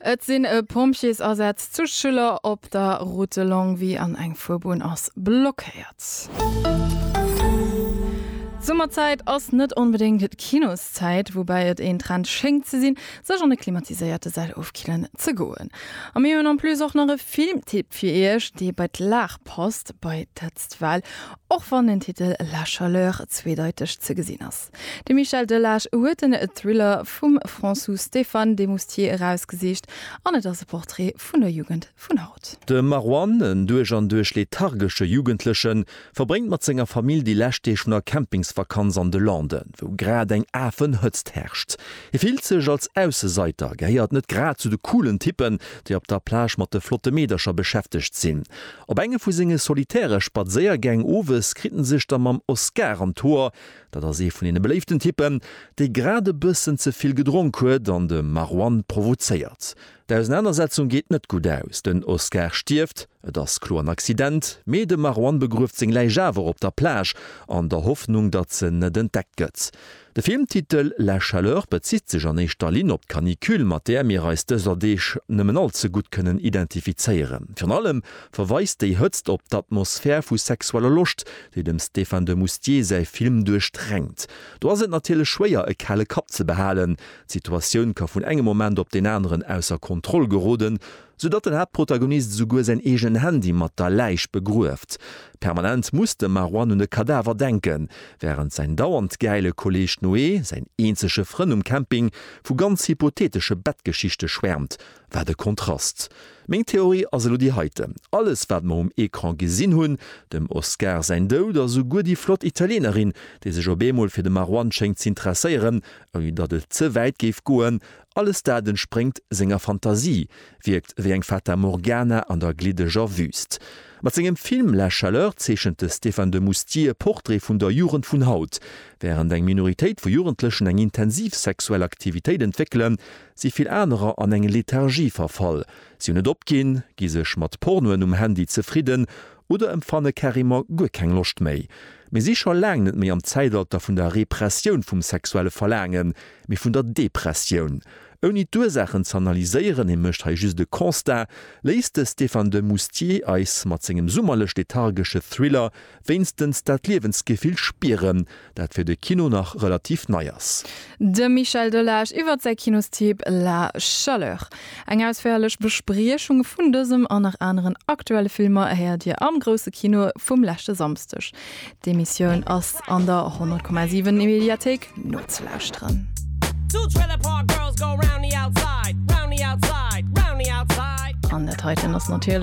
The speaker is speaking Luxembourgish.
Et sinn e Pompjeesasätz zu Schüller op der Route Longwy an eng Fuerbunn ass blockéiert. D'Summerzäit ass net onbedéngt d'Kinoszäit, woubäi et een Trend schéngt ze sinn, sech an e klimatiséierte Säll ofkillen ze goen. A mir hunn en plus och nach e Filmtipp fir Iech, dee bei d'Lag passt, bei d'Hëtztwell, och wann den Titel La Chaleur zweedeiteg ze gesinn ass. De Michel Delage huet den Thriller vum Françoux Stéphane de Moustier erausgesicht an et ass e Portrait vun der Jugend vun haut. De Marwan, en duerch an duerch lethargesche Jugendlechen, verbréngt mat senger Famill déi lescht Deeg vun der Campingsvakanz an de Landen, wou grad eng Afenhëtzt herrscht. Hie fillt sech als Ausseseiter, gehéiert net grad zu de coolen Typpen, déi op der Plage mat de flotte Meedercher beschäftegt sinn. Op enge vu senge solitäre Spadséiergäng owes kritt en sech da mam Oscar an d'Hoer, Dat ass ee vun deene beléiften Typpen, dee grad e bëssen ze vill gedronk huet an de Marwan provozéiert. D'Ausenanersetzung geet net gutt aus, den Oscar stierft, et ass kloer en Accident, mee de Marwan begrueft seng Läich awer op der Plage, an der Hoffnung, datt se net entdeckt gëtt. De Filmtitel La chaleur bezitt sech an éischter Linn op d'Canicule, mat där mir eis dëser Deeg nëmmen all ze gutt kënnen identifizéieren. Virun allem verweist déi Hëtzt op d'Atmosphär vu sexueller Loscht, déi dem Stéphane de Moustier säi Film duerchdrängt. Do ass et natierlech schwéier e kale Kapp ze behalen, d'Situatioun ka vun engem Moment op deen aneren ausser Kontroll geroden, sou datt den Haaptprotagonist esouguer säin eegenen Handy mat der Läich begrueft. Permanent muss de Marouane un e Kadaver denken, wärend säin dauernd gäile Kolleeg Noé, säin eenzege Frënn um Camping, vu ganz hypotheetesche Bettgeschichte schwäermt, Wat e Kontrast! Meng Theorie ass elo déi heite, Alles wat mer um Ecran gesinn hunn, dem Oscar säin Doud a souguer déi flott Italienerin, déi sech op eemol fir de Marwan schéngt z'intresséieren, ouni datt et ze wäit géif goen, alles dat entspréngt senger Fantasie, wierkt ewéi eng Fata Morgana an der gliddeger Wüüst. Mat sengem Film La Chaleur zeechent de Stéphane de Moustier e Portrait vun der Jugend vun haut. Wärend eng Minoritéit vu Jugendlechen eng intensiv sexuell Aktivitéit entwéckelen, si vill anerer an eng Lethargie verfall, si hunn et opginn, gi sech mat Pornoen um Handy zefridden oder empfanne carrément guer keng Loscht méi. Mir si scho laang net méi am Zäitalter vun der Repressioun vum sexuelle Verlaangen, mee vun der Depressioun. Ouni d'Ursaachen z'analyséieren, hie mécht hei just e Constat, léisst de Stéphane de Moustier eis mat sengem summerlech-lethargesche Thriller Wéinstens dat Liewensgefill spieren, dat fir de Kino nach relativ nei ass. De Michel Delage iwwert säi Kinostipp La Chaleur. Eng ausféierlech Bespriechung vun dësem an nach aneren aktuelle Filmer héiert Dir am Grousse Kino vum leschte Samsdeg. D'Emissioun ass an der 100,7 Mediathéik nozelauschteren. An dat heiten ass natierlech.